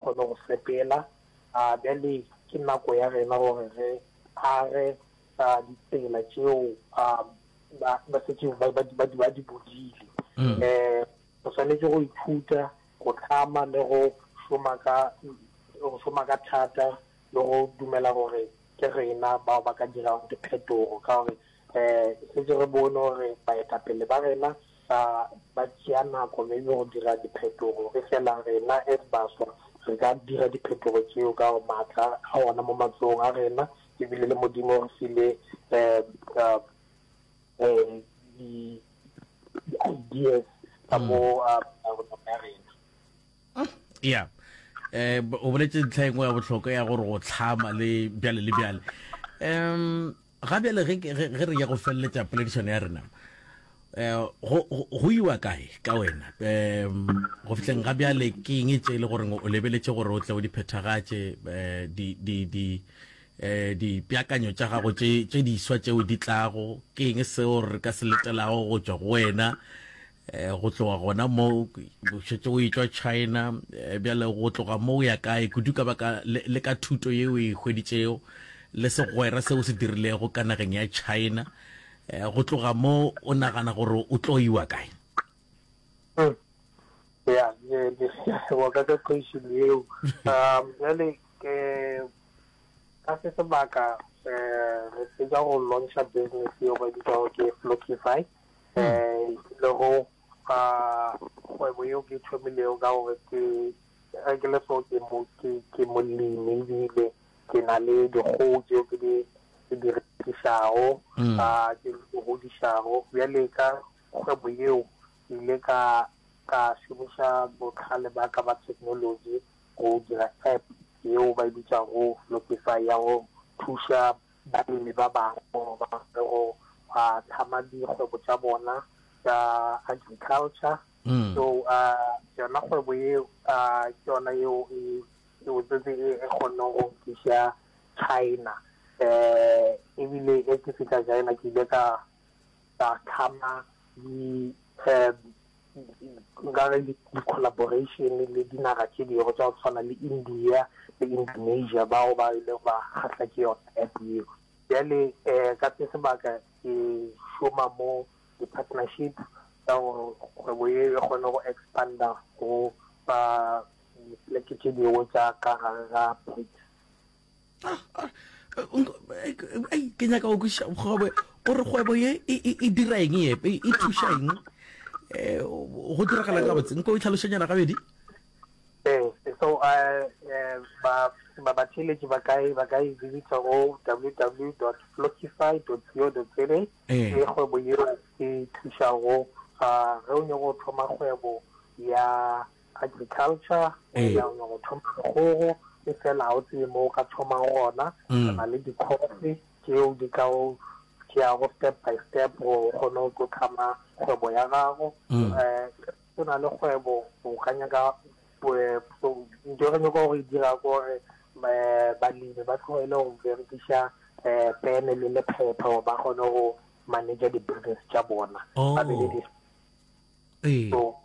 kgone go sepela. Bjale ke nako ya rena gore re age ditsela tšeo ba setseng ba di bodile. Um re swanetše go ithuta go tlhama le go šoma ka go šoma ka thata le go dumela gore ke rena bao ba ka dirago diphetogo ka gore um setse re bone gore baetapele ba rena Ba ba tšea nako maybe go dira diphetogo, efela rena as baswa re ka dira diphetogo tšeo ka gore maatla a gona mo matsogong a rena, ebile le Modimo o re file di-ideas ka mo a rona ya rena. ya um o boletse ntlha engwe ya bohlokwa ya gore go tlhama le bjale le bjale um Ga bjale ge, ge, ge re ya go feleletša poledišano ya rena, eh, go, go, go iwa kae ka wena? Eh, go fihleng ga bjale ke eng e tše le gore o lebeletše gore o tle o di phethagatše, eh, di, di, di, eh, dipeakanyo tša gago tše, tše diswa tšeo di tlago? Ke eng seo re ka se letelago go tšwa go wena? Eh, go tloga gona mo šetse o etswa china eh, bjale go tloga mo o ya kae kudu ka baka le ka thuto ye o e hweditsego le segwera se o se dirilego ka nageng ya china eh, go tloga mo o nagana gore o tlo iwa kae hmm. ya wa ka ka question eo um jale ka se sebaka re tseka go launcha business eo ba bitsago ke flockify um le go fa kgwebo yeo ke thomilego ka gore ke ge ke le so ke mo ke ke molemi ebile ke na le dikgogo tseo ke di ke di rekišago mm. ka ke di godišago bjale ka kgwebo yeo ke ile ka ka šomiša botlhale ba ka ba technology go dira app yeo ba e bitšago lopify ya go thuša Balemi ba bangwe ba re go a hlama dikgwebo tša bona tša agriculture, so yona kgwebo ye ke yona yeo e botsotsi e kgonne go nkisa China, ebile ge ke fihla China ke ile ka ba tlhama di nka re di-collaboration le dinaga tše dingwe tsa go tshwana le india le indonesia bao ba ile ba kgahla ke yona app eo bjale um ka se sebaka ke šoma mo di-partnership tsa gore kgwebo ye e kgone go expanda go ba dipoleke tše dingwe tsa ka gare ga brics Ah, ah, eh, ke nyaka go kwešiša gore kgwebo ye e, e, e dira eng epe e thuša eng um go diragala ka botse nko o tlhalošanyana gabedi so uh, uh, babatheletši ba ka ba ka e visita go www dot flockify dot co dot za le eh. kgwebo yeo e thušago ge o nyako go thoma kgwebo ya agriculture o ya o go thoma dikgogo e fela ga o tsebe mo o ka thomang gona mm. na le dikgofe tšeo di ka o tšeago step by step gore o kgone go tlo tlhama kgwebo ya gago um o na le kgwebo o ka nyaka eh, nto re nyaka go e dira ko gore eh, balemi ba tlogele go berekiša um pene le lephepha gore ba kgone go manager di-business tša bona ba be le oh. so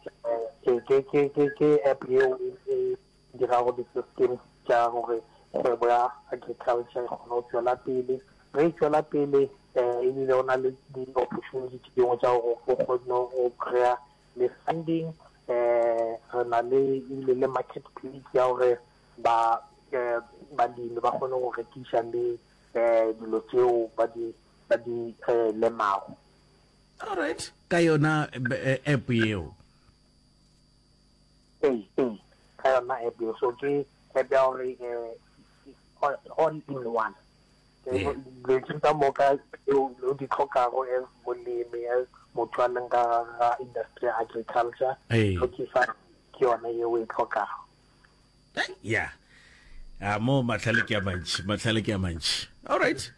ke app yeo e dirago di-systems tša gore kgwebo ya agriculture e kgone go tšwela pele ge e tšwela pele um ebile o na le di-opportunity tše dingwe tša gore o kgone go kry-a le funding um re na le ebile le market place ya gore ba um balemi ba kgone go rekiša le um dilo tseo ba di lemago All right. Ka yona eh, app yeo. Hey, hey. Ka yona app yeo. So ke app ya gore eh, all in one. Letsing ka moka o di tlhokago as molemi as motho a leng ka ga industry ya agriculture. Tlhokisa ke yone yeo e tlhokago. ya a ah, mo matlhale ke a mantšhi matlhale ke a mantšhi all right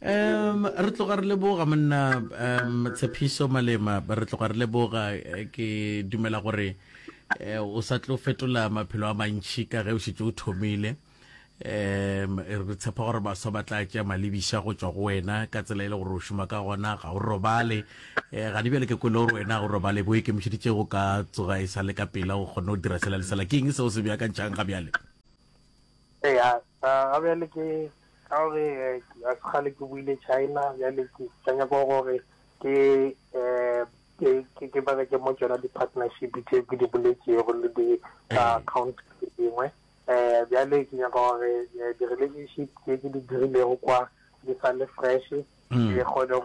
um re tloga re leboga monna um tshepiso malema re tloga re leboga eh, ke dumela gore eh, o sa tlo fetola maphelo a mantšhi ka ge o šetse o thomile um re tshepa gore baswa ba tla tšea malebiša go tšwa go wena ka tsela e le gore o šoma ka gona ga o robale um gane bjale ke kwele gore wena ga o robale bo ikemišeditše go ka tsoga e sa le ka pela o kgone go dira sela le sela ke eng seo se beakantšhang ga bjale ee ga bjale ke ka gore eh, a se gale ke buile china bjale ke tsanya kwa gore ke um ke bereke mo tsona di-partnership tse ke di boletsego le di-account dingwe um bjale ke nyaka gore eh, di-relationship tse ke di dirilego kwa di sa le fresh mm. ke kgone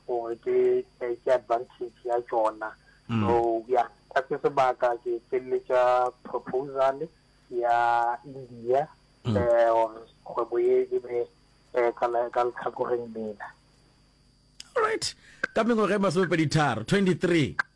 gore ke eh, ke advantage ya tsona mm. so ya ka se sebaka ke feleletša proposal ya india um kgwebo ye e be um ka letlhakoreng lela alright ka mengwaga e masomepedi tharo 23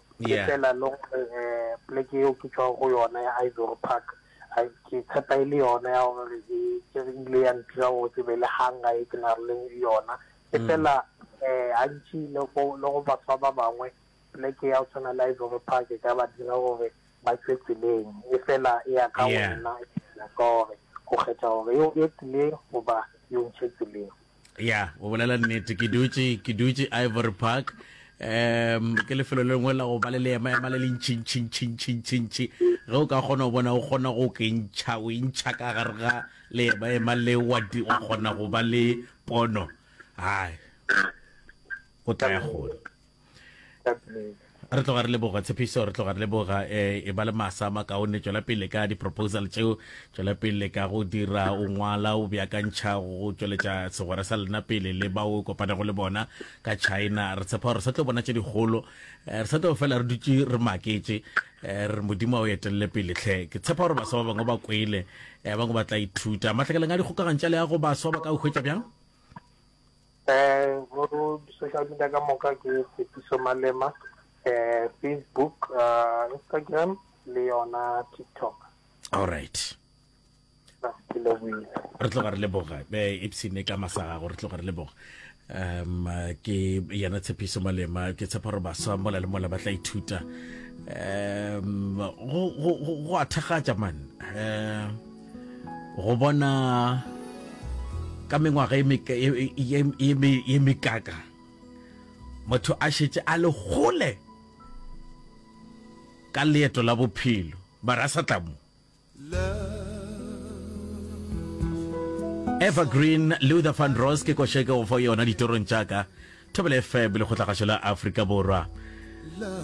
ke Yeah. fela le gore um poleke yeo ke tšwago go yona ya ivory park a ke tshepa e le yona ya gore e ke re ile ya ntira gore ke be le hanga e ke na re leng yona e fela um gantši le go le go batho ba ba bangwe poleke ya go tshwana le ivory park e ka ba dira gore ba tšwe tseleng e fela e ya ka Yeah. wena ya ka gore o kgetha gore yo e tseleng goba yo ntšhe tseleng ya o bolela nnete ke dutše ke dutše ivory park um ke lefelo le lengwe la go ba le leema ema le lentšhintšhintšhintšhintšhintšhi ge o ka kgona go bona o kgona go ke ntšha o intšha ka gare ga leema ema le wa kgona go ba le pono hai o tla ya gona re tloga re leboga tshepiso re tloga re leboga eh, e ba le masa a makaone tšwela pele ka di-proposal tšeo tšwela pele ka go dira o ngwala o beakantšha go tšweletša segwera sa lena pele le bao o kopanego le bona ka china re tshepa gore re sa tlo bona tše dikgolo eh, re sa tlo fela re dutše re maketše eh, re modimo a o etelele pele tlhe ke tshepa gore baswa ba bangwe ba kwele eh, bangwe ba tla ithuta matlhakeleng a dikgokagantša le ya go baswa ba ka o hwetša bjang Go di-social media ka moka ke Tshepišo Malema, Facebook, Instagram le yona TikTok. All right. re tloga re leboga epsene ka masa gago re tloga re leboga um ke yena tshepiso malema ke tshepa gore baswa mola le mola ba tla ithuta um go a thakgatša mane um Go bona ka mengwaga ye mekaka motho a šetše a le gole ka leeto la bophelo mara a sa tla mo evergreen luther van ros ke košeke go fa yona ditorong tšaka thobele fm lekgotlagašo la afrika borwa